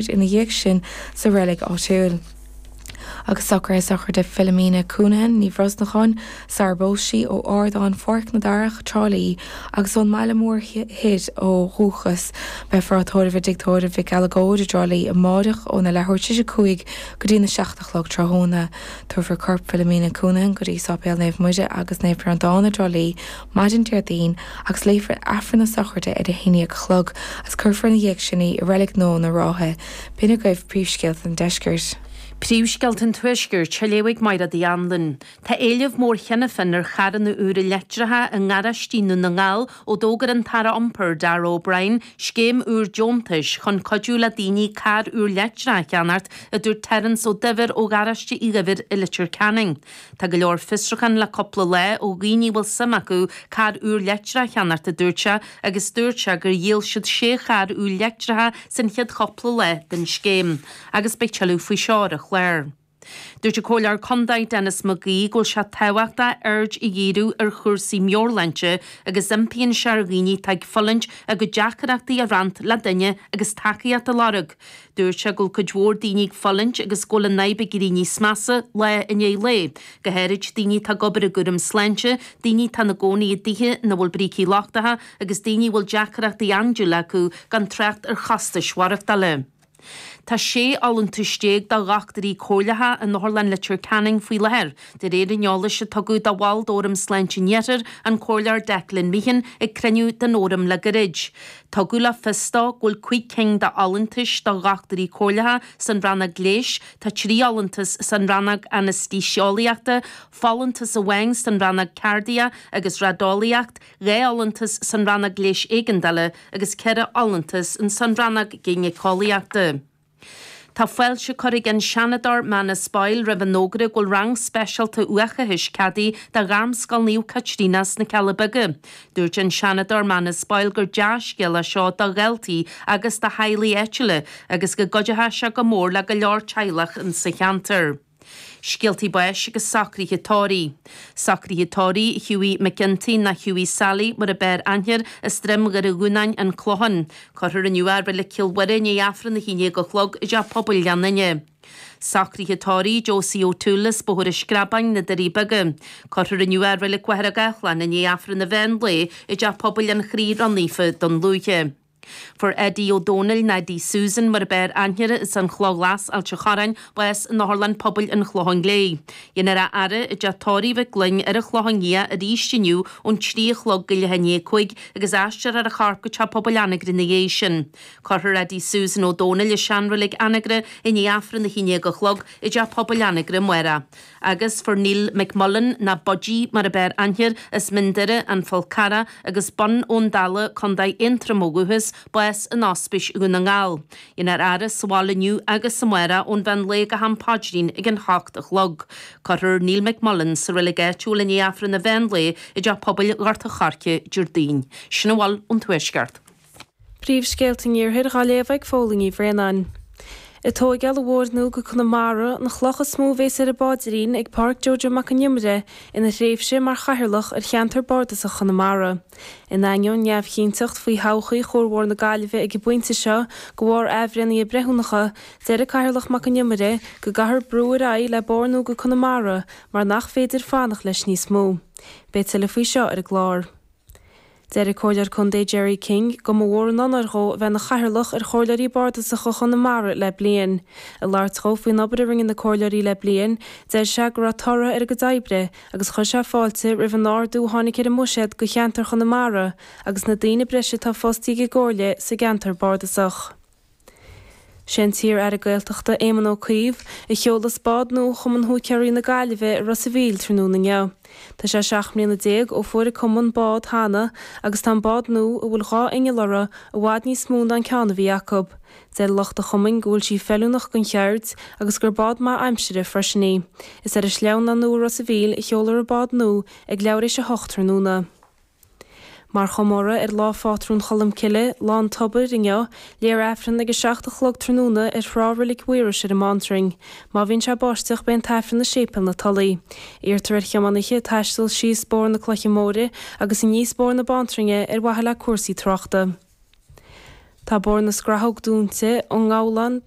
Bríd ina dhiaidh sin sa reilig áitiúil. Agus socruithe sochraide Philomena Counihan, Ní Bhrosnacháin, sara bpós sí, ó ardán Pháirc na Darach, Trá Lí, agus ón mbaile mór thoir ó dhúchas, beifear á tórramh i dTigh Tórraimh Mhic Uileagóid i dTrá Lí amáireach óna leathuair tar éis a cúig go dtí'n a seacht a chlog tráthnóna. Tabharfar corp Philomena Counihan go dtí Sáipéal Naomh Muire agus Naomh Breandán i dTrá Lí, maidin Déardaoin agus léifear Aifreann na Sochraide ar a haon dhéag a chlog agus cuirfear ina dhiaidh sin í i Reilig Nódh na Rátha. B'in agaibh Príomhscéalta an Deiscirt. Príomhscéalta an Tuaiscirt, á léamh ag Máire Uí Annluain. Tá éileamh mór cheana féin ar charranna úra leictreacha i ngaráistí i nDún na nGall ó d'fhógair an tAire Iompair, Darragh O'Brien, scéim úr deontais chun cuidiú le daoine carr úr leictreach a cheannacht, a dúirt Terence Ó Duibhir ó Gharáiste Uí Dhuibhir i Leitir Ceanainn. Tá go leor fiosruchán le cúpla lá ó dhaoine a bhfuil suim acu carr úr leictreach a cheannacht a dúirt sé agus dúirt sé gur dhíol siad sé charr úr leictreacha san chéad chúpla lá den scéim agus beidh tuilleadh faoi seo ar an chlár. Dúirt an Comhairleoir Condae Denis McGee go bhfuil sé tábhachtach aird a dhíriú ar chúrsaí meabhairshláinte agus impíonn sé ar dhaoine atá ag fulaingt a gcuid deacaireachtaí a rannt le duine agus tacaíocht a lorg. Dúirt sé go bhfuil cuid mhór daoine ag fulaingt agus go bhfuil an fhadhb ag éirí níos measa lá i ndiaidh lae, go háirid daoine atá ag obair i gcúram sláinte, daoine atá ina gcónaí i dtithe ina bhfuil brící lochtacha agus daoine a bhfuil deacaireachtaí andúile acu, gan trácht ar chostais mhaireachtála. Tá 16 fholúntas do dhochtúirí comhairleacha in Otharlann Leitir Ceanainn faoi láthair, de réir an eolais a tugadh do bhall d'Fhóram Sláinte an Iarthair, an Comhairleoir Declan Meehan, ag cruinniú den Fhóram le gairid. Tugadh le fios dó go bhfuil cúig cinn d'fholúntais do Dhochtúirí Comhairleacha san Rannóg Leighis, tá trí fholúntas san Rannóg Anaestéiseolaíochta, folúntas amháin san Rannóg Cairdiach agus Raideolaíocht, dhá fholúntas san Rannóg Leighis Éigeandála agus ceithre fholúntas san Rannóg Gínéiceolaíochta. Tá fáilte curtha ag an Seanadóir Manus Boyle roimh an fhógra go bhfuil rang speisialta uathachais ceadaithe do Ghairmscoil Naomh Caitríona sna Cealla Beaga. Dúirt an Seanadóir Manus Boyle gur dea-scéal é seo do dhaltaí agus do theaghlaigh áitiúla agus go gcuideoidh sé go mór le go leor teaghlach sa cheantar. Scéaltaí báis agus socruithe tórraimh. Socruithe tórraimh Hughie McGinty, nó Hughie Sally mar a b'fhearr aithne air as Droim Dhoire Dhúnáin, An Clochán. Cuirfear inniu i Reilig Chill Mhuire i ndiaidh Aifreann a hAon Dhéag a Chlog i dTeach Pobail Ghleann Fhinne. Socruithe tórraimh Josie O'Toole as Bóthar an Screabáin, Na Doirí Beaga. Cuirfear inniu i Reilig Mhachaire Gathlán i ndiaidh Aifreann an Mheán Lae i dTeach Pobail an Chroí Ró-Naofa, Dún Lúiche. Fuair Eddie Ó Dónaill, nó Eddie Susan mar ab fhearr aithne air as an Chloch Ghlas, Ailt a' Chorráin, bás in Otharlann Pobail an Chlocháin Léith. Dhéanfar a fhaire i dTeach Tórraimh Mhic Fhloinn ar an Chlochán Liath arís inniu ón trí a chlog go leath i ndiaidh a cúig agus aistreofar a chorp go Teach Pobail Anagaire ina dhiaidh sin. Cuirfear Eddie Susan Ó Dónaill i seanreilig Anagaire i ndiaidh Aifreann a haon déag a chlog i dTeach Pobail Anagaire, amárach agus fuair Neil McMullan nó Budgie mar ab fhearr aithne air as Mín Doire, An Fál Carrach agus Bun Abhann Dalla, Co Aontroim ó dhúchas, bás in Ospís Dhún na nGall. Dhéanfar a fhaire sa bhaile inniu agus amárach ón mheán lae go ham paidrín ag an h-ocht a chlog. Cuirfear Neil McMullan sa reilig áitiúil i ndiaidh Aifreann an mheán lae i dTeach Pobail Ghort a' Choirce, Diardaoin. Sin a bhfuil ón Tuaisceart. Príomhscéalta an Iarthair dhá léamh ag Phóilín Uí Bhraonáin. Is í tógáil an bhóthair nua go Conamara, an chloch is mó a bhéas ar an bpaidrín ag Pádraic Jojo Mac An Iomaire ina thréimhse mar Chathaoirleach ar Cheantar Bardasach Chonamara. In ainneoin neamhchinnteacht faoi thodhchaí Chuarbhóthar na Gaillimhe ag an bpointe seo de bharr athbhreithnithe breithiúnacha, deir an Cathaoirleach Mac An Iomaire go gcaithfear brú ar aghaidh le bóthar nua go Conamara mar nach féidir fanacht leis níos mó. Beidh tuilleadh faoi seo ar an gclár. Deir an Comhairleoir Contae Gerry King go mba mhór an onóir dhó a bheith ina Chathaoirleach ar Chomhairleoirí Bardasacha Chonamara le bliain. Ag labhairt dhó faoin obair a rinne na Comhairleoirí le bliain, deir sé go raibh toradh ar a gcuid oibre agus chuir sé fáilte roimh an ardú a tháinig ar a mbuiséad do cheantar Chonamara agus na daoine breise atá fostaithe ag an gComhairle sa gceantar bardasach. Sé an t-iar-aire Gaeltachta Éamon Ó Cuív a sheolfas bád nua Chumann Húicéirí na Gaillimhe i Ros a Mhíl tráthnóna inniu. Tá sé seacht mbliana déag ó fuair an cumann bád cheana agus tá an bád nua, a bhfuil dhá inneall uirthi, i bhfad níos mó ná an ceann a bhí acu. Deir lucht an chumainn go bhfuil sí feiliúnach don cheird agus gur bád maith aimsire freisin í. Is ar an sleamhnán nua i Ros a Mhíl a sheolfar an bád nua ag leathuair tar éis a hocht tráthnóna. Mar chomóradh ar Lá Phátrún Cholmcille, Lá an Tobair, inniu, léifear Aifreann ag a 7 a chlog tráthnóna ar thrá Reilig Mhaorais ar an mBántrainn. Má bhíonn sé ag báisteach beidh an tAifreann i Séipéal na Tulaí. Iarrtar ar thiománaithe taisteal síos bóthar na Cloiche Móire agus aníos bóthar na Bántrainne ar mhaithe le cúrsaí tráchta. Tá bóthar na Scrathóg dúnta ón ngabhlán taobh